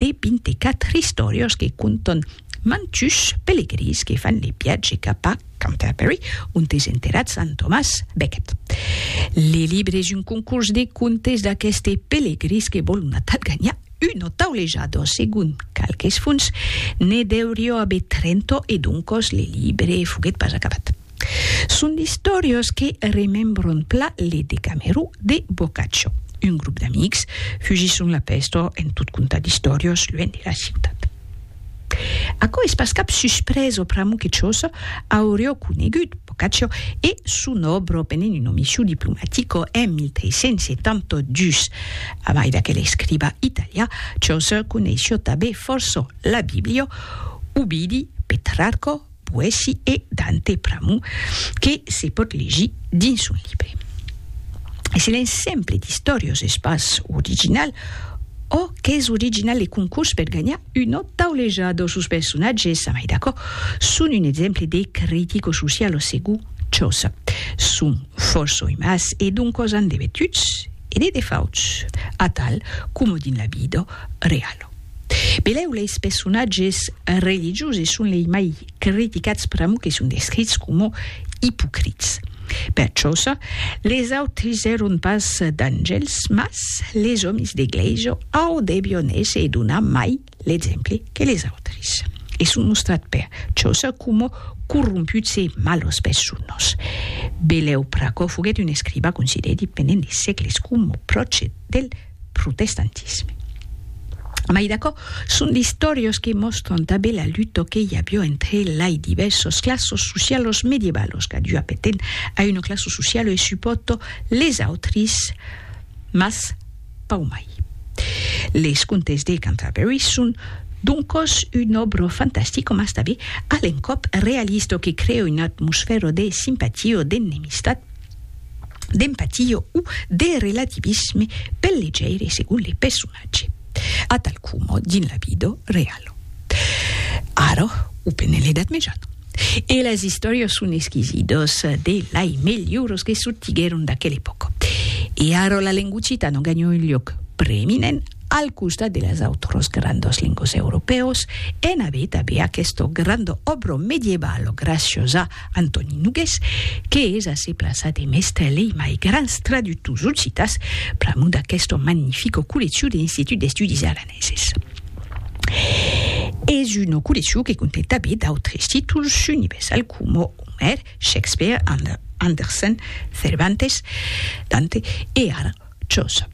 e 24 istòrios que conton mantuns pelegrins que fan le viatge cap a Canterbury, ont es enterrat Sant Tomàs Becket. Le libre es un concurs de contes d'aqueste pelegrins que vòl matat ganhar una taulejada, dont segon qualques fonts ne deurió aver 30 e doncos le libre foguèt pas acabat. Son d'istòrias que remembran pla le Decamerò de Boccaccio. Un grop d'amics fugison la pèsta en tot contar d'istòrias luènh de la ciutat. Aquò es pas cap suspresa pr'amor que Chaucer auriá conegut Boccaccio e son òbra pendent una mission diplomatica en 1372. A mai d'aquel escriba italià, Chaucer coneissiá tanben fòrça la Bíblia, Ovidi, Petrarca, poèsi e Dante pr'amor que se pòt legir dins son libre. Es un exemple d'istòriós es pas original, ò qu'es original le concors per ganhar una tauleja dò sos personatges, a mai d'aquò, son un exemple de critico-socialo segur Chaucer. Son fòrça oimas e doncòs an de vertuts e de defauts, atal coma dins la vida reala. Pelèu leis pessonatges religiosi son lei mai criticats pr'amor que son descrits coma ipocrits. Per çòsa, les autris èron pas d'angèls, mas les òmis de glèisa au debion èsser e donar mai l'exemple que les autris. E son mostrat per çòsa coma corromputs e malas personas. Belèu Pracò foguèt un escriba considerit pendent de sègles coma pròche del protestantisme. Mai d'aquò, son d'istorios que mòstran tanben la luta que i avió entre lai divèrsas clasas socialas medievalas qu'adiu apeten a una classa sociala e supòrta les autris, mas pau mai. Les Contes de Canterbury son doncas una òbra fantastica mas tanben a l'encòp realista que crèa una atmosfèra de simpatia o d'ennemistat, d'empatia o de relativisme pel legeire segon le personatge, atal coma dins la vida reala, ara o pendent l'Edat Mejana. E las istòrias son esquisidas de lai melhoras que sortiguèron d'aquela epòca. E ara la lenga occitana ganha un luòc preeminent al costat de las autras grandas lengas europèas, en aver tanben aquesta granda òbra medievala gracias a Antòni Nogués, que es assez plaçat e mèstre lei mai grans traductors occitans pr'amor d'aquesta magnifica colleccion de l'Institut d'Estudis Aranèses. Es una colleccion que contèn tanben d'autres títols universals coma Omèr, Shakespeare, Anderson, Cervantes, Dante e ara Chaucer.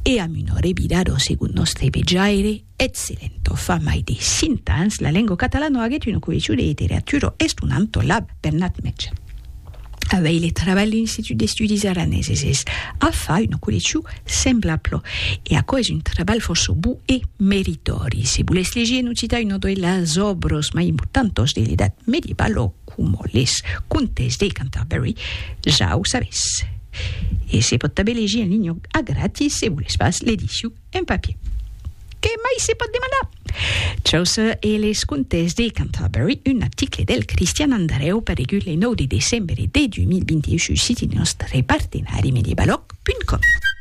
E amb una revirada segon nòstre vejaire, Eth Silento, fa mai de cinc ans, la lengua catalano aguet una coleccion de literatura estonanta lab Bernat Metge. Auei le trabalh l'Institut d'Estudis Araneses es a far una coleccion semblabla. E aquò es un trabalh fòrça bon e meritòri. Se volètz legir en occitan una de las òbras mai importantas de l'Edat Mediebala, coma les Contes de Canterbury, ja o sabètz. E se pòt tanben legir en linha a gratis se volètz pas l'edicion un papier. Qué mai se pòt demandar? Chaucer e les contes de Canterbury, un article del Cristian Andrèu paregut le 9 de decembre de 2021 sus siti nòstre partenari medievaloc.com.